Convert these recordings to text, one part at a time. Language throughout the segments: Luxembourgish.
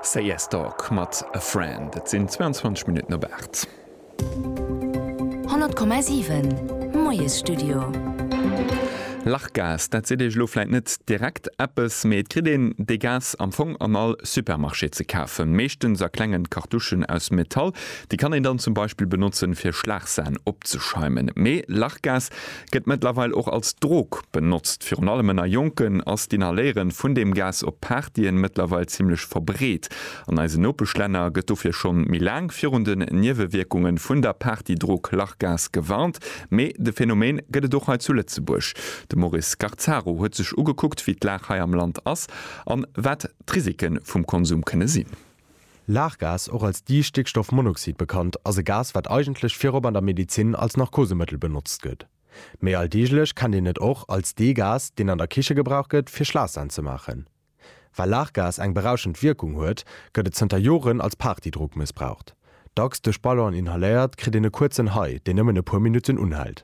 Say Yes Dog mat A Friend. Et sinn 22 Minutten op 8. 100,7 Moiesstudio. Lachgas, dat seet Iech elo vläit net direkt eppes, mee et kritt een dee Gas am Fong an all Supermarché ze kafen. Meeschtens a klengen Cartouchen aus Metall. Déi kann een dann zum Beispill benotzen, fir Schlagsan opzeschäumen. Mee Lachgas, Gëtt mëttlerweil och als Drog benotzt. Virun allem ënner Jonken ass d'Inhaléieren vun deem Gas op Partyen mëttlerweil zimmlech verbreet. An eisen Nopeschlänner gëtt dofir schonn méi laang virun den Niewewierkungen vun der Partydrog Lachgas gewarnt. Mee de Phänomen gëtt et och hei zu Lëtzebuerg. De Maurice Scarzaro huet sech ugekuckt wéi d'Lag hei am Land ass an wat d'Risiken vum Konsum kënne sinn. Lachgas, och als Distéckstoffmonoxid bekannt, ass e Gas, wat eigentlech virop an der Medezin als Narkosemëttel benotzt gëtt. Méi alldeeglech kennt een et och als dee Gas, deen an der Kiche gebraucht gëtt, fir Schlaassahn ze maachen. Well Lachgas eng berauschend Wierkung huet, gëtt et zënter Joren als Partydrog mëssbraucht. Dacks duerch Ballon inhaléiert, kritt een e kuerzen High, deen nëmmen e puer Minutten unhält.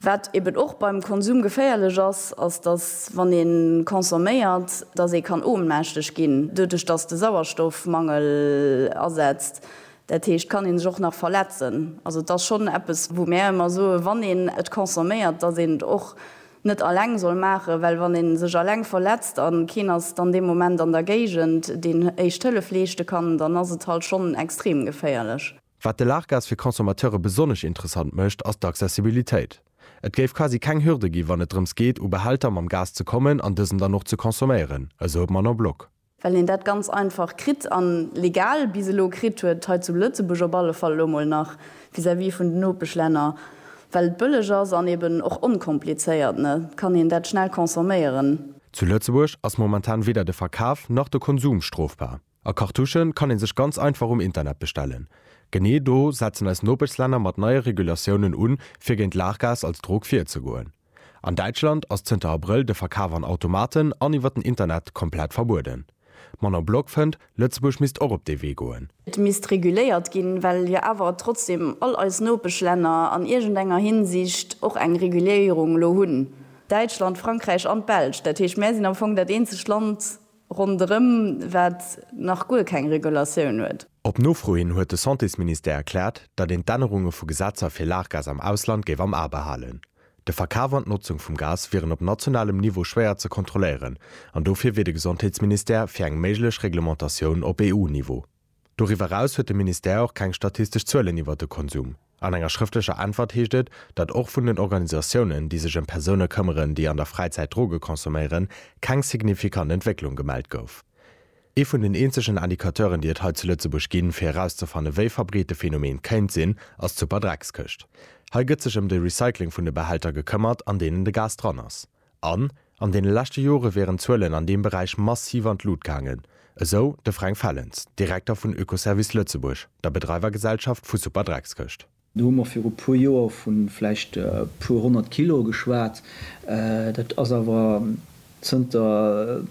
Wat eben och beim Konsum geféierlech ass, ass dass wann ee consomméiert, dass ee kann ohnmächteg ginn doduerch dass de Sauerstoffmangel asetzt. Dat heescht kann een sech och nach verletzen. Also et ass schonn eppes wou mär ëmmer soe wann een et consomméiert, dass een et och net alleng soll maachen, well wann een sech alleng verletzt a keen ass dann dee Moment an der Géigend deen Éischt Hëllef leeschte kann, dann ass et halt schonn extrem geféierlech. Wat de Largas fir Consommateure besonnesch interessant mécht, ass d'Accessibilitéit. Et géif quasi keng Hürde gi wann et drëms geet, u Behälter mam Gas ze kommen an dësen dann och ze consomméieren, esou de Manon Block. Well een dat ganz einfach kritt an legal bis elo kritt huet, hei zu Lëtzebuerg op alle Fall elo mol nach, vis-à-vis vun den Nopeschlänner, well et bëlleg ass an eben och onkomplizéiert, ne, kann een dat schnell consomméieren. Zu Lëtzebuerg ass momentan weder de Verkaf nach de Konsum strofbar. A Cartouchen kann een sech ganz einfach um Internet bestellen. Genee do setzen eis Nopeschslänner mat neie Regulatiounen un, fir géint Laachgas als Drog virzegoen. An Däitschland ass zënter Abrëll de Verkaf an Automaten an iwwer den Internet komplett verbueden. D'Manon Block fënnt, Lëtzebuerg misst och op dee Wee goen. Et misst reguléiert ginn, well jo awer trotzdeem all eis Nopeschlänner an iergendenger Hinsicht och eng Reguléierung elo hunn. Däitschland, Frankräich an d'Belsch. Dat heescht, mär sinn am Fong dat eenzegt Land, ronderëm, wat nach guer keng Regulatioun huet. Op Nofro hin huet de Santésministère erkläert, datt een d'Ännerunge vu Gesetzer fir Laachgas am Ausland géif am A behalen. De Verkaf an d'Notzung vum Gas wieren op nationalem Niveau schwéier ze kontrolléieren an dofir wier de Gesondheetsministère fir eng méiglech Reglementatioun op EU-Niveau. Doriwwer eraus huet de Ministère och keng statistesch Zuelen iwwert de Konsum. An enger schrëftlecher Äntwert heescht et, datt och vun den Organisatiounen, déi sech ëm Persoune këmmeren, déi an der Fräizäit Droge consomméieren, keng signifikant Entwécklung gemellt gouf. Ee vun den eenzegen Indicateuren, déi et hei zu Lëtzebuerg ginn, fir erauszefanne wéi verbreet de Phänomen kéint sinn, ass d'Superdreckskëscht. Hei gëtt sech ëm de Recycling vun de Behälter gekëmmert, an deenen de Gas dran ass. An an deene leschte Jore wieren d'Zuelen an deem Beräich massiv an d'Lut gaangen, esou de Fränk Fellens, Direkter vun Oekoservice Lëtzebuerg, der Bedreiwergesellschaft vu Superdreckskëscht. Do hu mer viru puer Joer vu vläicht e puer honnert Kilo geschwat. Dat ass awer zënter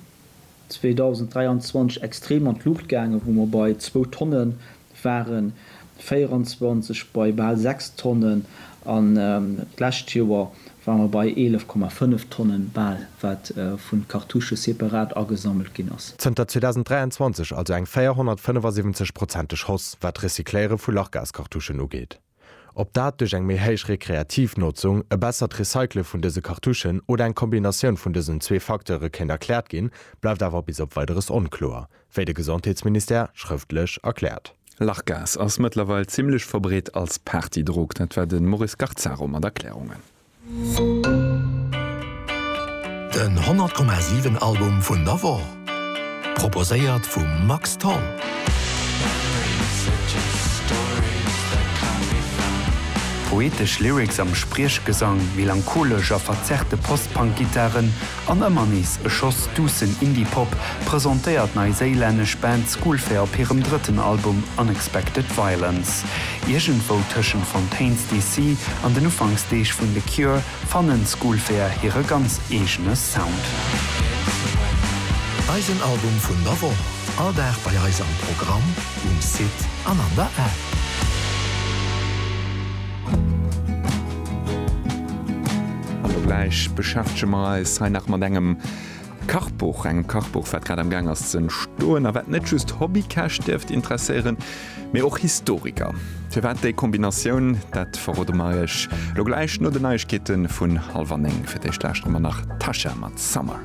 2023 extrem an d'Luucht gaangen, wou mer bei zwou Tonne waren, 2024 bei bal sechs Tonnen an d'lescht Joer ware mer bei 11,5 Tonnen bal, wat vun de Cartouche separat agesammelt ginn ass. Zënter 2023 also eng 475-prozenteg Hausse, wat d'Recycléiere vu Lachgascartouchen ugeet. Ob dat duerch eng méi héich rekreativ Notzung, e bessert Recycle vun dëse Cartouchen oder eng Kombinatioun vun dësen zwee Facteure kéint erkläert ginn, bleift awer bis op Weideres onkloer, wéi de Gesondheetsministère schrëftlech erkläert. Lachgas ass mëttlerweil zimmlech verbreet als Partydrog, dat war de Maurice Garzaro mat Erklärungen. Den 100,7 Album vun der Woch, proposéiert vum Max Tholl. Poetesch Lyrics am Spriechgesang, melancholesch a verzerrte Post-Punk-Gittaren. An ëmmer nees e Schoss duussen Indie-Pop presentéiert d'neiséilännesch Band Schoolfair op hirem drëtten Album Unexpected Violence. Iergendwou tëschent Fontaines DC. an den Ufanksdeeg vun The Cure fannen Schoolfair hire ganz eegene Sound. Eisen Album vun der Woch, all Dag bei eis am Programm, um Site an an der App. Hallo, gläich beschäftege mer eis hei nach mat engem Kachbuch, engem Kachbuch, wat grad am Gaang ass ze entstoen a wat net just Hobbykäch dierft interesséieren, mee och Historiker. Firwat déi Kombinatioun, dat verrode mer iech lo gläich no den Neiegkeete vun hallwer néng. Fir d'éischt lauschteren mer nach Tasha mat Summer.